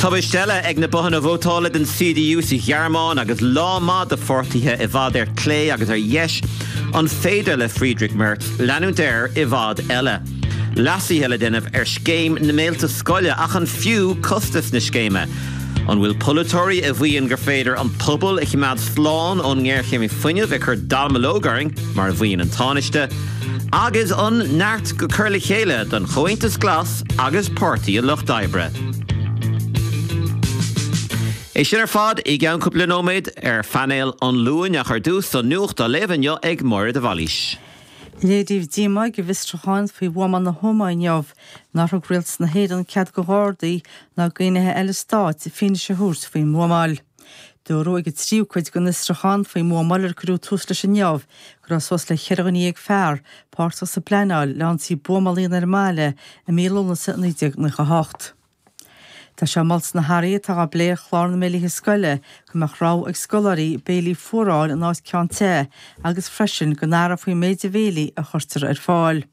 Tubaist eile ag na bothanna vótála den CDU sa Ghearmáin agus lá maith do pháirtithe i bhfad ar clé agus ar dheis. An féidir le Friedrich Merz leanúint air i bhfad eile? Leasuithe le déanamh ar scéim na mbéilte scoile, ach an fiú costas na scéime? An bhfuil polaiteoirí a mhaíonn gur féidir an pobal a choimeád slán ón ngéarchéim fuinnimh ag cur dallamullóg orainn, mar a mhaíonn an Tánaiste, agus an neart go cur le chéile don Chomhaontas Glas? agus Páirtí an Lucht Oibre. É sin ar fad i gceann cúpla nóiméad ar Phainéal an Luain ach ar dtús an nuacht á léamh inniu ag Máire de Bhailís. Léiríodh díomá ag an bhFiosrúchán faoi Bhuamáil na hÓmaí inniu nár thug Rialtas na hÉireann cead do Ghardaí ná d'fhinnéithe eile Stáit fianaise a thabhairt faoin mbuamáil. Dúradh ag an tríú cuid den fhiosrúchán faoin mbuamáil ar cuireadh tús leis inniu go raibh suas le ceithre dhuine dhéag fear páirteach sa bpleanáil le ionsaí buamála a dhéanamh ar an mbaile i mí Lúnasa 1998. Tá sé molta sna hathruithe atá á bplé ar chlár na mbéilithe scoile go mbeadh rogha ag scoláirí béilí fuar a fháil in áit ceann te agus freisin go n-athrófaí an méid de bhéilí a chuirtear ar fáil.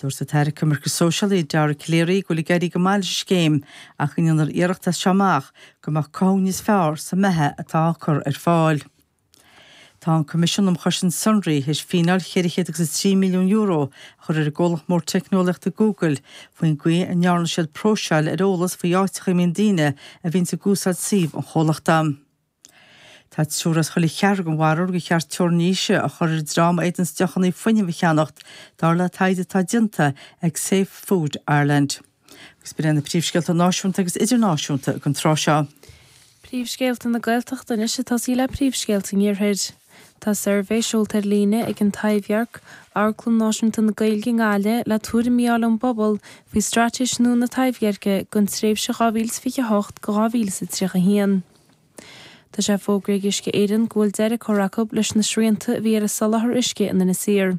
Dúirt an tAire Coimirce Sóisialaí Dara Calleary go bhfuil ag éirí go maith leis an scéim ach go ndéanfar iarracht as seo amach go mbeadh cothú níos fearr sa mbeatha atá á cur ar fáil. Tá an Coimisiún um Chosaint Sonraí tar éis fíneáil cheithre chéad agus a trí milliún euro a chur ar an gcomhlacht mór teicneolaíochta Google faoin gcaoi a ndearna siad próiseáil ar eolas faoi áiteacha a mbíonn daoine a bhíonns ag úsáid suíomh an chomhlachta. Tá triúr as chuile cheathrar den bharúil gur cheart teorainn aoise a chur ar an dream a fhéadanns deochannaí fuinnimh a cheannacht, dar le taighde atá déanta ag Safe Food Ireland. Agus b'in iad na príomhscéalta náisiúnta agus idirnáisiúnta ag an tráth seo. Príomhscéalta na Gaeltachta anois ag tosaí le príomhscéalta an Iarthair. Tá suirbhé seolta ar líne ag An Taibhdhearc, amharclann náisiúnta na Gaeilge i nGaillimh, le tuairimí a fháil ón bpobal faoi straitéis nua na Taibhdheirce don tréimhse 2028-2031. Tá sé fógartha ag Uisce Éireann go bhfuil deireadh curtha acu leis na srianta a bhí ar an soláthar uisce in Inis Oírr.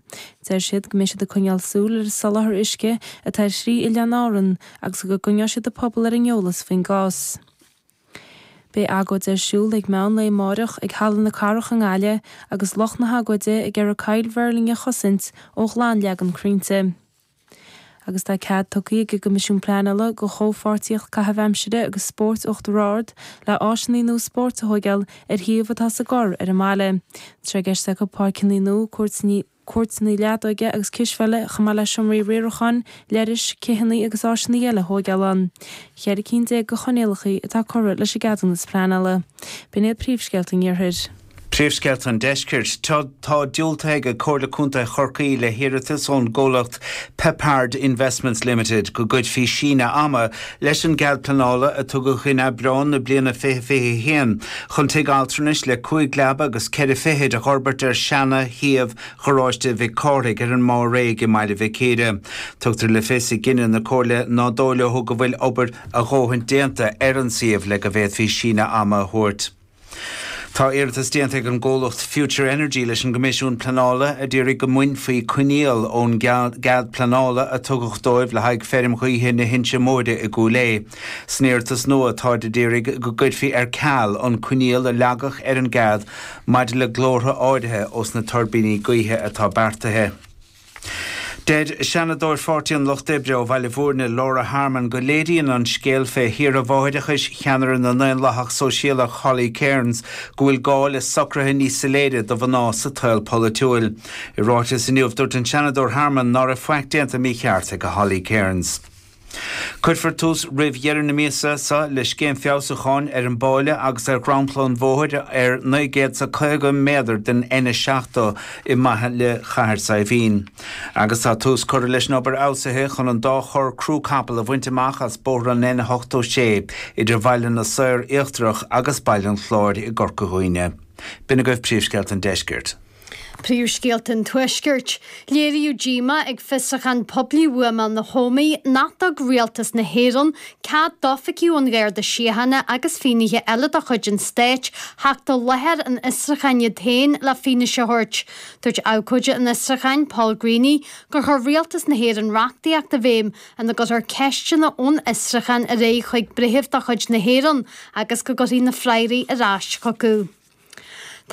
Deir siad go mbeidh siad ag coinneáil súil ar an soláthar uisce atá ar thrí oileán Árann agus go gcoinneoidh siad an pobal ar an eolas faoin gcás. Beidh agóid ar siúl ag meán lae amáireach ag Halla na Cathrach i nGaillimh agus lucht na hagóide ag iarraidh Coill Mhuirlinne a chosaint ó ghlanleagan crainnte. agus tá cead tugtha ag an gCoimisiún Pleanála do Chomhpháirtíocht Caitheamh Aimsire agus Spóirt Uachtar Ard le áiseanna nua spóirt a thóigeáil ar shuíomh atá sa gCorr ar an mbaile. Tá sé i gceist acu páirceanna nua, cúirteanna leadóige agus cispheile, chomh maith le seomraí riaracháin, leithris, citheanna agus áiseanna eile a thóigeáil ann, cheithre cinn déag de choinníollacha atá curtha leis an gceadúnas pleanála. B'in iad príomhscéalta an iarthair. Príomhscéalta an Deiscirt. Tá diúltaithe ag Comhairle Contae Chorcaí le hiarratas ón gcomhlacht Peppard Investments Limited go gcuirfí síneadh ama leis an gcead pleanála a tugadh in Aibreán na bliana 2021 chun tigh altranais le cúig leaba agus ceithre fichid a fhorbairt ar Seana Shuíomh Gharáiste Mhic Cárthaigh ar an Má Réidh i mBaile Mhic Íre. Tugtar le fios i gcinneadh na Comhairle ná dóigh leo go bhfuil obair a dhóthain déanta ar an suíomh le go bhféadfaí síneadh ama a thabhairt. Tá iarratas déanta ag an gcomhlacht Future Energy leis an gCoimisiún Pleanála a d'iarraidh go mbainfí coinníoll ón gcead pleanála a tugadh dóibh le haghaidh feirm ghaoithe na hInse Móire i gCúil Aodha. San iarratas nua táid d'iarraidh go gcuirfí ar ceal an coinníoll a leagadh ar an gcead maidir le glórtha áirithe ós na tuirbíní gaoithe atá beartaithe. Deir Seanadóir Pháirtí an Lucht Oibre ó Bhaile Bhúirne, Laura Harmon, go léiríonn an scéal fé shaoire mháithreachais cheannaire na nDaonlathach Sóisialach, Holly Cairns, go bhfuil gá le socruithe níos soiléire do mhná sa tsaol polaitiúil. I ráiteas inniu, dúirt an Seanadóir Harmon ná raibh faic déanta mícheart ag Holly Cairns. Cuirfear tús roimh dheireadh na míosa seo le scéim feabhsúcháin ar an bpábháil agus ar dhromchla an bhóthair ar naoi gcéad is a caoga méadar den N70 i mbaile Chathair Saidhbhín agus tá tús curtha leis an obair fheabhsaithe chun an dá chorr crú capall a bhaint amach as bóthar an N86 idir Baile na Saor Íochtarach agus Baile an Chláir i gCorca Dhuibhne. B'in agaibh príomhscéalta an deiscirt. Príomhscéalta an Tuaiscirt. Léiríodh díomá ag fiosruchán poiblí bhuamáil na hÓmaí nach dtabharfaidh rialtas na hÉireann cead d'oifigigh ón Gharda Síochána agus fínnithe eile de chuid an stáit theacht i láthair an fhiosrucháin iad féin le fianaise a thabhairt. Dúirt abhcóide an fhiosrucháin, Paul Greaney, gur chuir rialtas na hÉireann reachtaíocht i bhféidhm ina gcuirfear ceisteanna ón fhiosruchán ar aghaidh chuig breitheamh de chuid na hÉireann agus go gcuirfí na freagraí ar ais chucu.